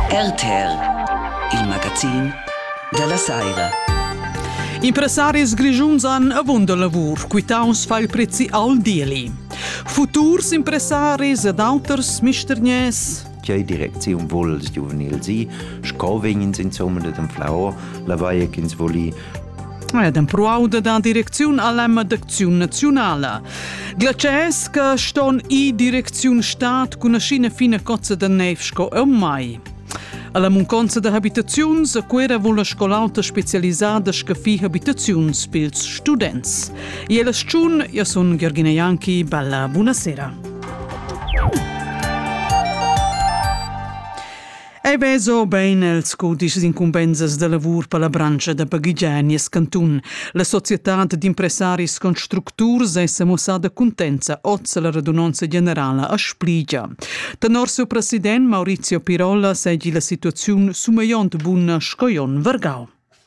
RTL, il magazin dalla Saira. Impressaris grischuns han avunda lavur, quitaus fa il prezzi al deli. Futurs impressaris ed auters mistergners tgei direcziun vul il giuvenil si, sco vegn ins insomma de dem Flau, la vaia ch'ins voli ed empruauda da direcziun a l'emma d'acziun naziunala. Glaciers che ston i direcziun stat cun aschina fina cozza da neiv sco eu mai. Alla munconza da habitaziuns a Cuera vul la scolauta specialisada scaffir habitaziuns pils students. E la sciun, io sun Georgina Janki, bella, buonasera. Ei vezo bein els cudischs incumbensas da lavur per la branscha da baghegiar nies cantun. La societad d'impressaris constructurs è semussada cuntenza oz la radunonza generala a Spligia. Tenor siu president Maurizio Pirola seigi la situaziun sumegliont buna sco jon vargau.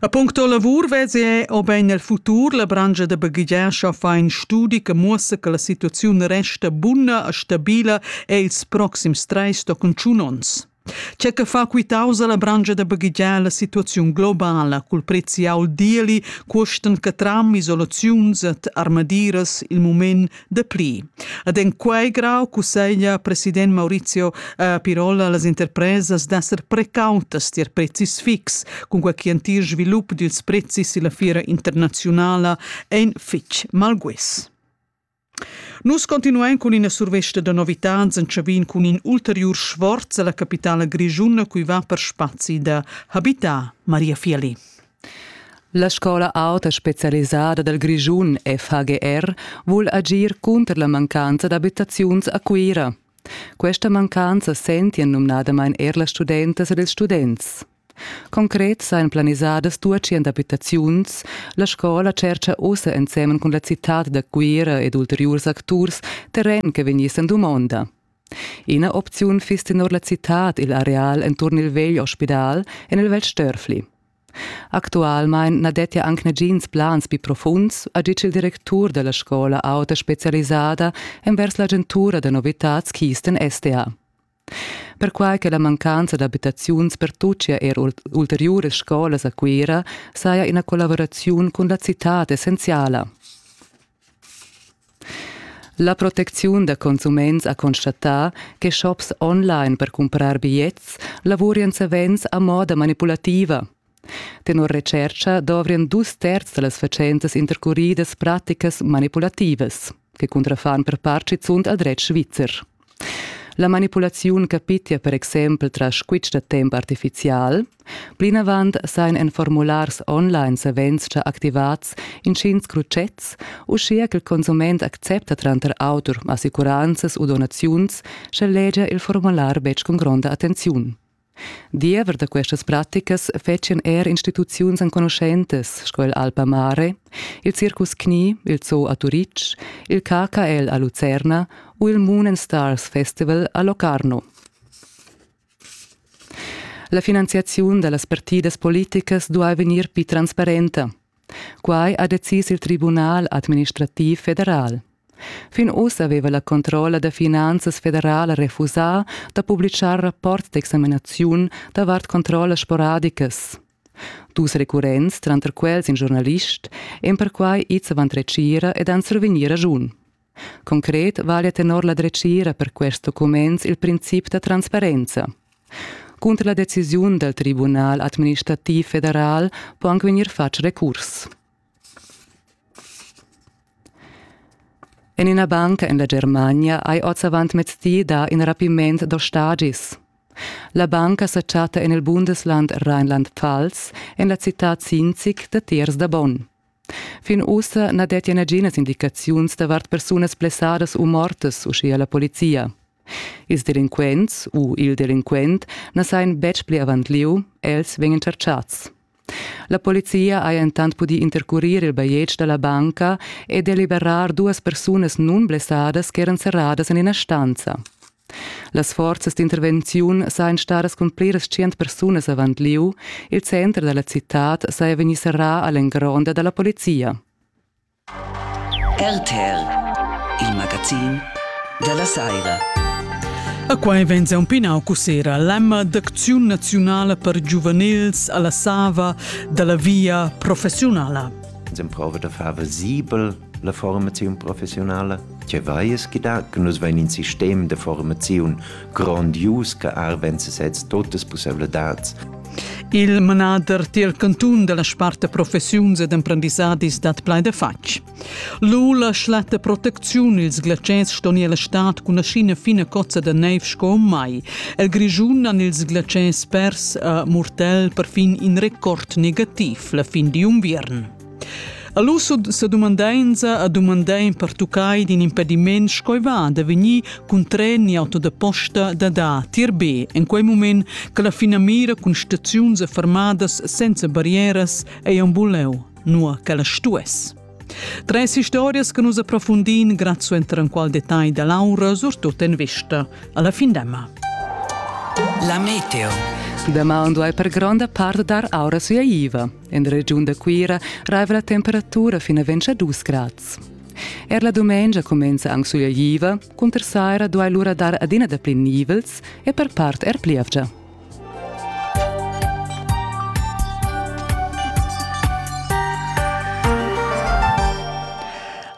A puncto lavur vezi è obein el futur la brangia da baghegiar fa in studi che muossa che la situaziun resta buna e stabila e ils proxims treis tochen tschun onns. C'è che fa quitausa la brangia da baghegiar la situaziun globala cul prezzi aul dieli, custan che tram, isolaziuns et armadiras il moment dapli. Ed en quei grau cusseglia president Maurizio eh, Pirola las interpresas d'esser precautas tier prezis fix, cun quei che entir svilup dils prezis e la fiera internazionala ein fitg malguis. Nus continuein cun ina survesta da novitads entschavin cun in ulteriur sforz alla capitala grischuna cui va per spazi da habitar Maria Fiali. La scola auta specialisada dal Grischun FHGR vul agir cunter la mancanza d'abitaziuns a Cuira. Questa mancanza sentien numnadamain er las studentas ed ils students. Concret sain planisadas 200 abitaziuns. La scola tschercha ussa ensemen cun la citad da Cuira ed ulteriurs acturs terren che vegnissen dumonda. Ina opziun fiss tenor la citad igl areal enturn il vegl ospidal en il Val Störfli. Actualmein na dettia anc nagins plans pli profunds, ha ditg il directur dalla scola auta specialisada envers l'agentura da novitads Kisten SDA. Perquai che la mancanza d'abitaziuns pertuccia er ulteriuras scolas a Cuira saja ina collaboraziun cun la citad essenziala. La protecziun da consuments ha constatà che shops online per cumprar bigliets lavurian savens a moda manipulativa. Tenor retschercha dovrien dus terzs da las fatschentas intercuridas praticas manipulativas che cuntrafan per part schizunt al dretg svizzer. La manipulaziun capitia per exempel tras squitsch da temp artifizial. Plinavant sain en formulars online savens già activats inschins crutschets, uschia ch'il consument accepta tranter auter assicuranzas u donaziuns, sche legia il formular betg cun gronda attenziun. Diever da questas praticas fetschan er instituziuns enconuschentas sco il Alpa Mare, il Circus Knie, il Zoo a Turitg, il KKL a Lucerna u il Moon and Stars Festival a Locarno. La finanziaziun da las partidas politicas duai vegnir pli transparenta. Quai ha decis il Tribunal administrativ federal. Fin uss aveva la controlla da finanzas federala refusà da publitgar rapport d'examinaziun davart controllas sporadicas. Dus recurrents, tranter quels in giornalist, èn perquai ids avant retgira ed han survegnì raschun. Concret vaglia tenor la dretgira per quest documents il princip da transparenza. Cunter la decisiun dal Tribunal administrativ federal può anche vegnir fatg recurs. En ina banca en la Germania hai oz avant mezdi dà in rapiment da stagis. La banca sa chatta en il Bundesland Rheinland-Pfalz, en la citad Sinzig datiers da Bonn. Fin ussa na dettia naginas indicaziuns davart persunas blessadas u mortas, uschia la polizia. Ils delinquents u il delinquent na sajan betg pli avant lieu, els vegnan chatschads. La polizia haja entant pudì intercurir il bajetg da la banca e deliberar duas persunas nunblessadas ch'eran serradas en ina stanza. Las forzas d'intervenziun sajan stadas cun pliras tschient persunas avant lieu. Il center da la citad saja vegnì serrà a l'engronda da la polizia. RTL, il magazin da la saira. A quai vegn un pinau cussera l'emma d'acziun naziunala per giuvenils alla Sava dalla via professiunala. S'improva da far visibel la formaziun professionala, che vaies chi da che nus vain in sistem da formaziun grandius che arvenza sez totas possibilitads. Il manader tier cantun della sparta professiuns ed emprendissadis dat plai de fatg. Lula schlatta protecziun ils glatschers ston el stat cun ascina fina cozza de neiv sco mai. El Grischun han ils glatschers pers a Murtel perfin in record negativ la fin di unviern. Allus sa dumandainza a dumandain pertuccai d'in impediment schoi va da vegnir cun tren ni auto da posta da da tir B en quei moment che la finamira cun staziuns fermadas senza barrieras ei un buleu, nua che la stuess. Tres historias che nus approfundin grazie enter in qual detagl da Laura, surtut en vista alla findemma. La meteo. Damaun duai per gronda part dar aura sua IVA. En regiun da Cuira raiva la temperatura fin a 22 grads. Er la dumengia cumenza anc sugliaiva, cunter saira duai lura dar adina dapli nivels e per part er plievgia.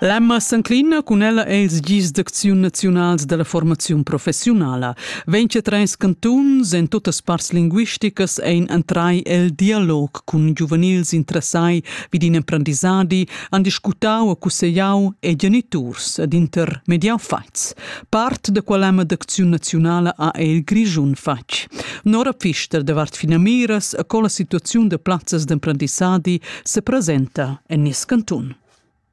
L'Emma s'enclina cun ella els gis d'acziun naziunals dalla formaziun professiunala. Vegn che treis cantuns en tuttas parts linguisticas ein entrai el dialog cun giuvenils interessai vid in emprendisadi, han discutau e cusseglau e geniturs ed intermediau fatgs. Part da quell'Emma d'acziun naziunala ha il Grischun fatg. Nora Pfister davart finamiras e con la situaziun de plazzas d'emprendisadi se presenta en nies cantun.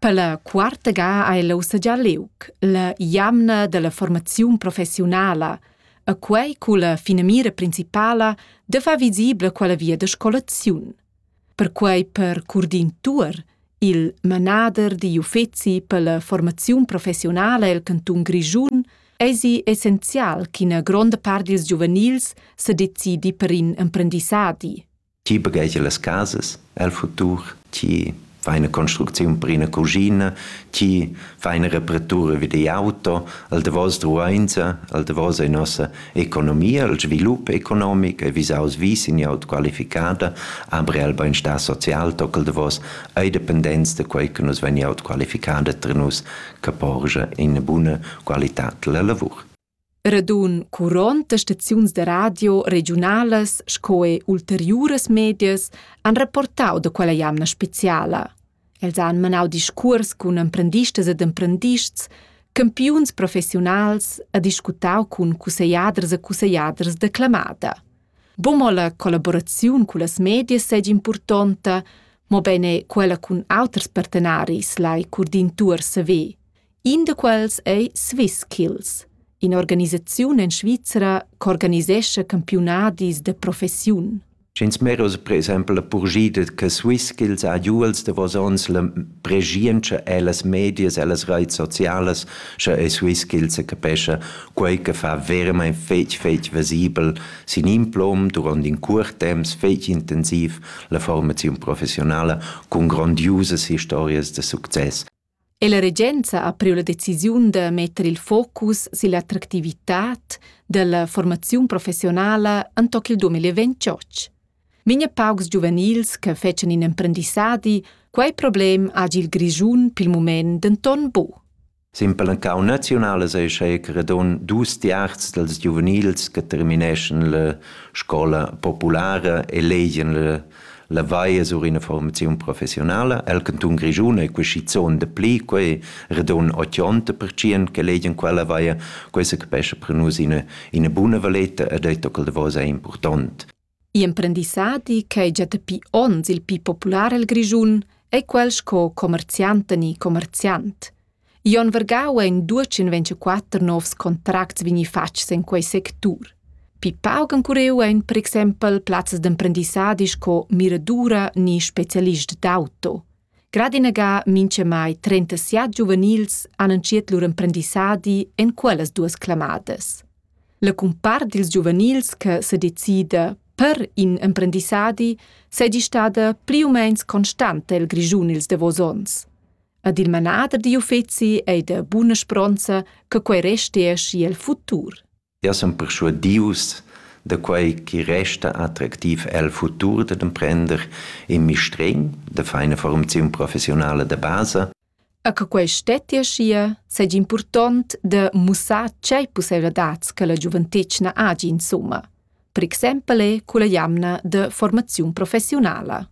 Per la quarta ga ei lu sagià liug la jamna dalla formaziun professiunala e quei culla finamira principala da far visibla quella via da scolaziun. Perquei per Curdin Tuor, il manader digl uffeci per la formaziun professiunala el cantun Grischun, eisi essenzial ch'ina gronda part dils giuvenils sedecidi per in emprendissadi. Ti baghegia las casas el futur, ti fai ina construcziun per ina cuschina, ti fai ina reparatura vi digl auto, al davos duainsa, al davos ei nossa economia, il svilup economic ei visaus vi sin glieud qualificada, aber el beinstar social toc al davos ei dependents da quei che nus vegn glieud qualificada ter nus che porscha ina buna qualitad della lavur. Radun curont da staziuns da radio regiunalas sco er ulteriuras medias han rapportau da quella jamna speciala. Els han manau discuors cun emprendistas ed emprendists, campiuns professiunals e discutau cun cussegliaders e cussegliaders da clamada. Bo mo la collaboraziun con las medias seigi impurtonta, mo bene quella cun auters partenaris lai curdin tuor saver. In da quels ei Swisskills, in'organisaziun en Svizra ch'organisescha campiunadis da professiun. Sch'ins miraus per exempel la purschida che Swisskills ha giu els davos onns la preschientscha ellas medias, ellas reits socialas, sche ei Swisskills se capescha quei che fa veramein fetg fetg visibel sin in plom duront in cuort temps fetg intensiv la formaziun professionala cun grandiusas historias da success. è la regenza ha priu la decisiun da metter il focus silla attractivitad dalla formaziun professionala enttoc il 2028. Migna paucs giuvenils che fecen in emprendissadi, quei problem hagi il Grischun pil mument denton bu. Simpel en cau naziunalas ei sche che redon dus tiarz dels giuvenils che termineschen la scola populara e legien la La vai es ura ina formaziun professiunala el cantun Grischun e quischizuond dapli quai redon 80 percient che legian quella vaia, questa capescha per nus ina, ina buna valeta e detto che il davos è important. I'emprendissadi ch'è già dapi onns il più popular el Grischun è quel sco commerziant ni commerziant. Jon Vargau en duatschen ventiquatter novs contracts vegni fatgs en quei sectur. Pi pauc encureu ein per exempel plazzas d'emprendissadi sco miradura ni specialist d'auto. Gradinaga mincha mai 37 giuvenils han entschiet lur emprendissadi en quellas duas clamadas. La cumpart dils giuvenils che se decida per in emprendissadi sei di stada pli u meins constanta el Grischun ils davos ons. Ad il manader digl uffeci ei da buna spronza che quei restia schi el futur. Eu sun perschuadius da quai chi resta attractiv el futur dad emprender in mistregn da feina formaziun professionala da basa. A che quai stettia schia, seigi important da mussar tgei pusseivladats che la giuventetgna agi insomma. Per exempel è culla jamna de formaziun professionala.